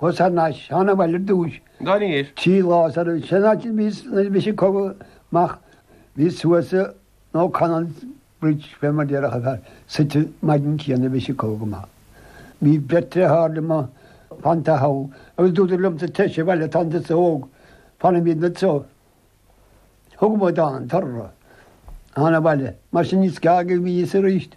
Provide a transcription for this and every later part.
Thosaigh na Seanabhaill ar dtús. Trí lá sar a bhí sé in áit a bhí nuair a bhris an cogadh amach bhí suas nó Conan's Bridge fé mar déarfadh an fear suite an maidin céanna a bhris an cogadh amach. Bhí beirt fhear thall i mo Pant a' How agus dúradar liomsa teithse abhaile tánn tusa óg fanfaimid anso. Thug mo Dad an tor orthu. Thána abhaile. Mar sin níos geaga a bhí fhios aríst.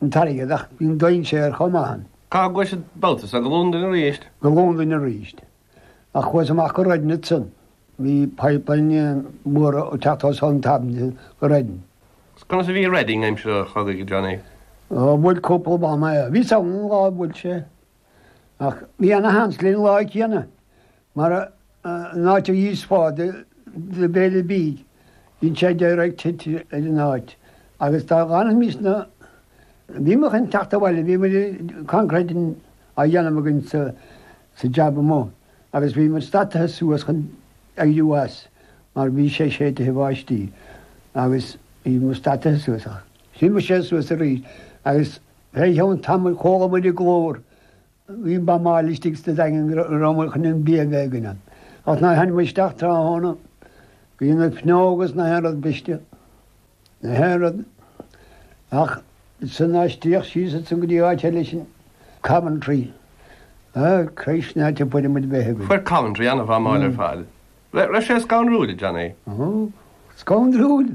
an t-airgead ach bhí an dainséar chomh maith ann. Cá gcuais an babhta seo? Go Londain arís? Go Londain arís. Ach chuas amach go Reading ansan. Bhí pipeline mór ag teacht suas ón Thames go Reading. Conas a bhí Reading aimsir an chogaidh, Johnny? Ó, bhuail cúpla buama é. Bhíos ann an lá a bhuail sé. Ach bhí ana-sheans linn an lá céanna. Mar an áit a bhíos ag fáil do bhéile beag, dhein sé direct hit ar an áit agus dá bhfanfaimís na bhí muid chun teacht abhaile, bhí muid coincréit á dhéanamh againn sa sa jab amuigh agus bhí muid stadtaithe suas chun éirí as mar bhí sé séidtithe bháistí agus bhí muid stadtaithe suas ach thriomaigh sé suas arís agus fé cheann tamaill chuala muid an glór Bhí buamáil istigh sna daingin go raibh an chnoic bíog éigin ann. Ach nuair a tháinig muid isteach tráthnóna, bhí na fuinneoga is na haon rud briste, na haon rud, ach ansan aistríodh síos ansan go dtí áit eile sinn, Coventry. Ah, Christ, ná te fuair muid bheith againn. Fuair Coventry ana-bhuamáil ar fad. Raibh sé scanrúil, a Johnny. Ó, scanrúil!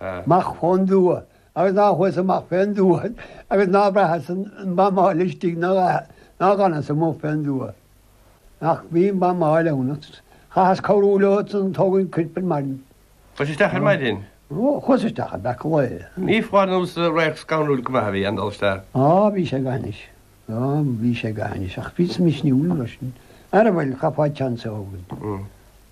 Amach fén dtuath, agus ná chuas amach fén dtuath, agus ná bhraitheas an bhuamáil istigh ná ná gcannas amuigh fén dtuath. Ach bhí an bhuamáil ann ach chaitheas cabhrú leo san ag tógaint coirp ar maidin. Chuais isteach ar maidin? Ó, chuas isteach le breacadh lae. Ní foláir nó gur radharc scannrúil go maith a bhí ann dul isteach. Á, bhí sé go hainnis. Á, bhí sé go hainnis, ach bhíos misniúil mar sin. Á bhuel, chaithfeá chance a thógaint.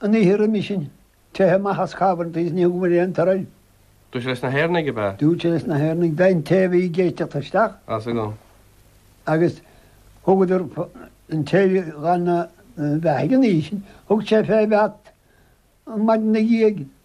An oíche roimhe sin, teitheadh amach as Coventry is níor thug muid aon toradh. Dúirt sé leis na hÉireannaigh ab ea? Dúirt sé leis na hÉireannaigh bheith an té a bhí ag éisteacht isteach. As agam. Agus thugadar an té gan a bheith ag an oíche sin, thug sé fé Bheat an maidin na dhiaidh